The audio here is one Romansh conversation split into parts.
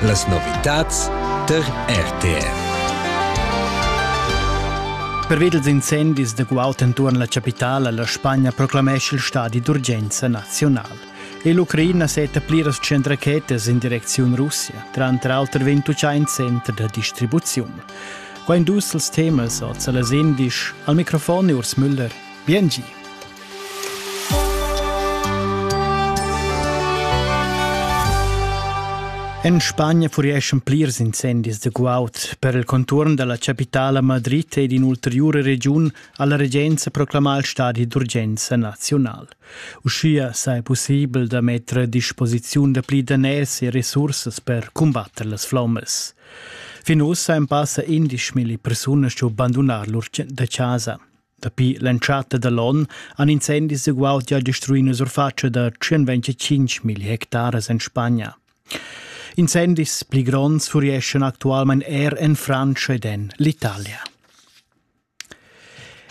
Las novitads tar RTR. Perved ils incendis de guaut entuorn la capitala la Spagna proclamesce il stadi d'urgenza nazional. E l'Ucraina setta pliras cent rachetas in direcziun Russia, tranter auter 21 center da distribuziun. Qua in dus els temas oz las indisch, al microfon Urs Müller Biengi! En Spagna furieschan plirs incendis da guaud. Per il conturn dalla capitala Madrid ed in'ulteriura regiun ha la regenza proclamà il stadi d'urgenza nazional. Uschia sei possibel da metter a disposiziun da pli daners e resursas per combatter las flommas. Fin ussa ein passa 11 mila persunas giu bandunar lur da casa. Dapi l'entschatta da l'on han incendis ugual gia destruì la surfatscha da 125.000 hectares en Spagna. Incendis pli gronds furieschan actualmain er en Francia ed en l'Italia.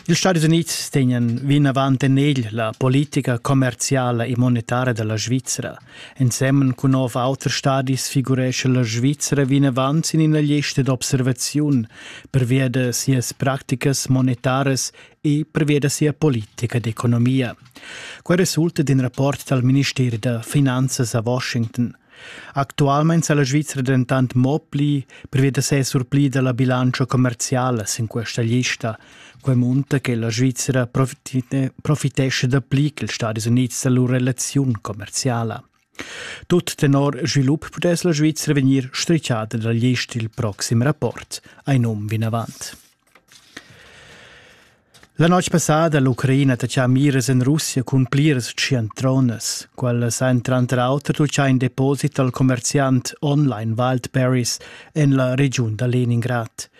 Ils Stati Unids tegnan vinavant en egl la politica commerziala e monetaria da la Svizra – Ensemen cun nov auter stadis figuresce la Svizzera vinavant sin ina lista d'observaziun, pervia da sias practicas monetaras e pervia da sia politica d'economia. Quai resulta d'in rapport dal Ministeri da finanzas a Washington. Actualmein sa la Svizzera dentant mo pli pervia da ses surpli dalla bilancia commerciala sin questa lista, Quei munta che la Svizra profitescha dapli che ils Stadis Unids da lur relaziun commerciala. Tut tenor svilup pudess la Svizra vegnir strichada dal gest il proxim rapport, ein um vinavant. La notg passada l'Ucraina taccia miras en Russia cun pliras ciantronas. Quellas ein tranter auter tuccà in deposit al commerziant online Wildberries en la regiun da Leningrad.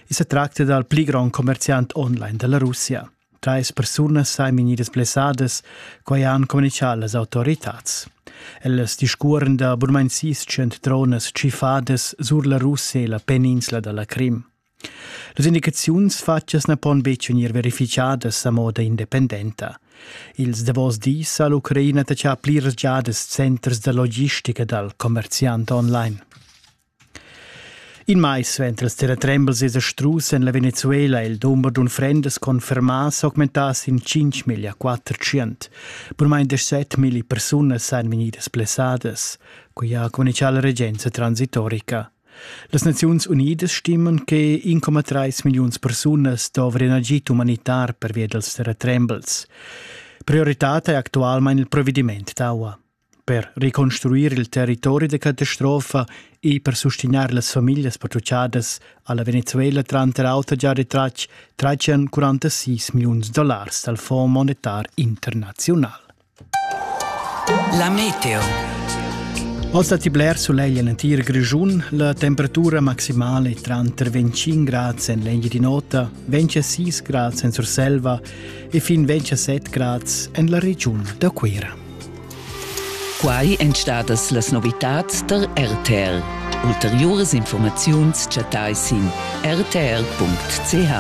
I se tracta dal pli grond commerciant online della Russia. Trais persunas sain vegnidas blessadas, quai han communichà las autoritats. Ellas discuoren da burmainsis cent tronas tschifadas sur la Russia e la peninsula dalla Crim. Las indicaziuns fatgas na pon betg vegnir verificadas a moda independenta. Ils davos dis ha l'Ucraina tachà pliras giadas centers da logistica dal commerziant online. In mais suenter ils terratrembels esa strus en la Venezuela ha il dumber d'unfrendas confermà s'augmentà sin 5,4%. Bunmain 17.000 persunas han vegnidas blessadas. Quai ha communichà la regenza transitorica. Las Naziuns Unidas stimman che 1,3 milliuns persunas dovrian agid umanitar pervia dals terratrembels. Prioritad è actualmain il provediment d'aua. Per reconstruir il territori da catastrofa e per sustegnair las famiglias patruchadas ha la Venezuela tranter auter gia retratg 346 milliuns dollars dal Fonds monetar internaziunal. La meteo. Oz datti bler sulegl en l'entir Grischun. La temperatura maximale tranter 25 grad en l'eglia di nota, 26 grad en Surselva e fin 27 grad en la regiun da Cuira. Quai èn stadas las novitads tar RTR. Ulteriuras informaziuns chattai sin rtr.ch.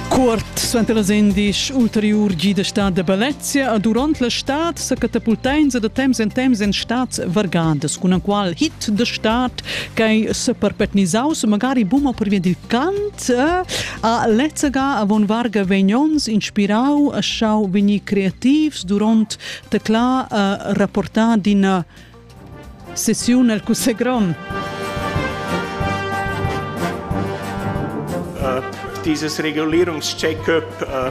Cuort suenter las endisch ulteriur gi da stad da Balezia a durant la stad sa catapultainsa da temps en temps en stads vargadas cun qual hit da stad ch'ei seperpetnisaus magari buma pervia dil cant eh, A lezzega avon varga vegnons inspirau a schau vegnir creativs duront tecla a rapportar d'ina sessiun el Cussegl grond. Uh, dieses Regulierungscheck-up uh,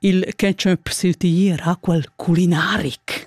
Il ketchup sil tier ha quel culinaric.